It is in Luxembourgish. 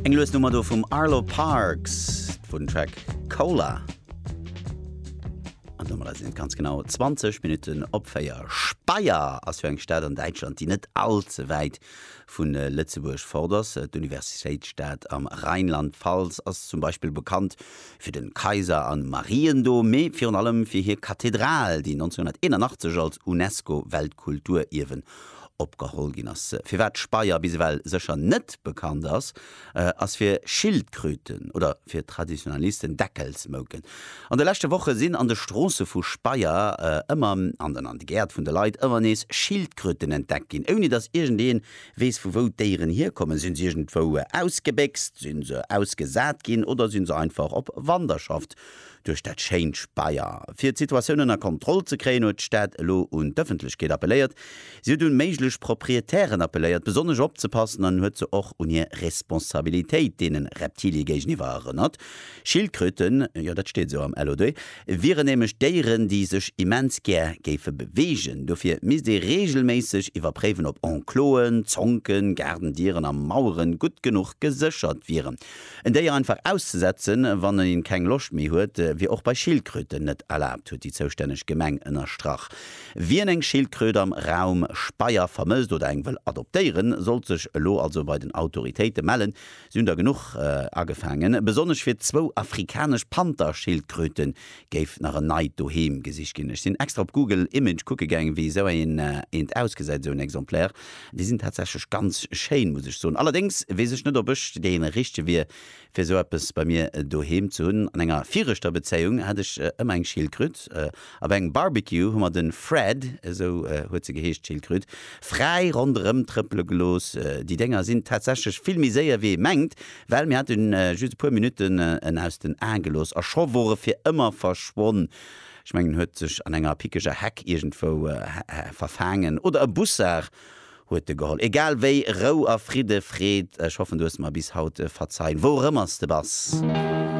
Eng lues Nummer do vum Arlo Parks vun Track Cola. An Nummer sinn ganz genau 20 Minuten op Féier. Speyer ass jo eng Stad an Däitschland, déi net all ze wäit vun äh, Lëtzebuerg fort ass. Äh, D'Universitéitsstad am Rheinland-Pfalz ass zum Beispill bekannt fir den Kaiser an Mariendom, mee virun allem fir hir Kathedral, déi 1981 als UNESCO-Weltkulturierwen opgeholl ginn ass. Firwat d'Speier bis ewell sécher net bekannt ass, ass fir Schildkröten oder fir Traditionalisten Deckelsmouken. An de leschte Woche sinn an de Stroosse vu Speyer ëmmer an an de Gäert vun de Leit ëmmer nees Schildkröten entdeckt ginn, ouni datt iergend een weess vu wou d'Déieren hierkommen. Sinn se iergendwou ausgebéchst, sinn se ausgesat ginn oder sinn se einfach op Wanderschaft Duerch dat schéint Speier. Fir d'Situatioun ënner Kontroll ze kréien, huet d'Stad elo un d'Ëffentlechkeet appelléiert. Si huet un méiglech Proprietären appelléiert, besonnesch opzepassen an huet se och un hir Responsabilitéit deene Reptilie géigeniwwer erënnert. Schildkröten, jo dat steet esou am LOD, wieren nämlech Déieren, déi sech immens gär géife beweegen. Dofir misst ee reegelméisseg iwwerpréiwen, ob Enclosen, Zonken, Gaardendieren a Maueren gutt genuch geséchert wieren. En Déier einfach auszesetzen, wann een keng Loscht méi huet, wier och bei Schildkröten net erlaabt, huet déi zoustänneg Gemeng ënnerstrach. Wien eng Schildkröt am Raum Speyer vermësst oder eng wëll adoptéieren, sollt sech elo also bei den Autoritéite mellen. Si hunn der genuch agefaangen, besonnesch fir zwou afrikanesch Panther-Schildkröten, géif nach en neit Doheem gesicht ginn. Ech sinn extra op Google Image kucke gaang, wéi esou eent ausgesäit, esou en Exemplaire. Déi sinn tatsächlech ganz schéin, muss ech soen. Allerdéngs weess ech net, ob ech déi richtege wier, fir esou eppes bei mir doheem ze hunn. An enger viregter Bezéiung hat ech ëmmer eng Schildkröt. A bei engem Barbecue hu mer de Fred, esou huet se geheescht, d'Schildkröt, fräi ronderëmtrëppele gelooss. Déi Dénger sinn tatsächlech vill méi séier, wéi ee mengt. Well mir hat en just e puer Minutten en aus den Aen gelooss a scho wor e fir ëmmer verschwonn. Ech mengen en huet sech an enger pickeger Heck iergendwou verfaangen oder e Bussard huet e geholl. Egal wéi, Rou a Fridde, Freed, ech hoffen du hues mer bis haut verzeien, wou och ëmmer s de bass.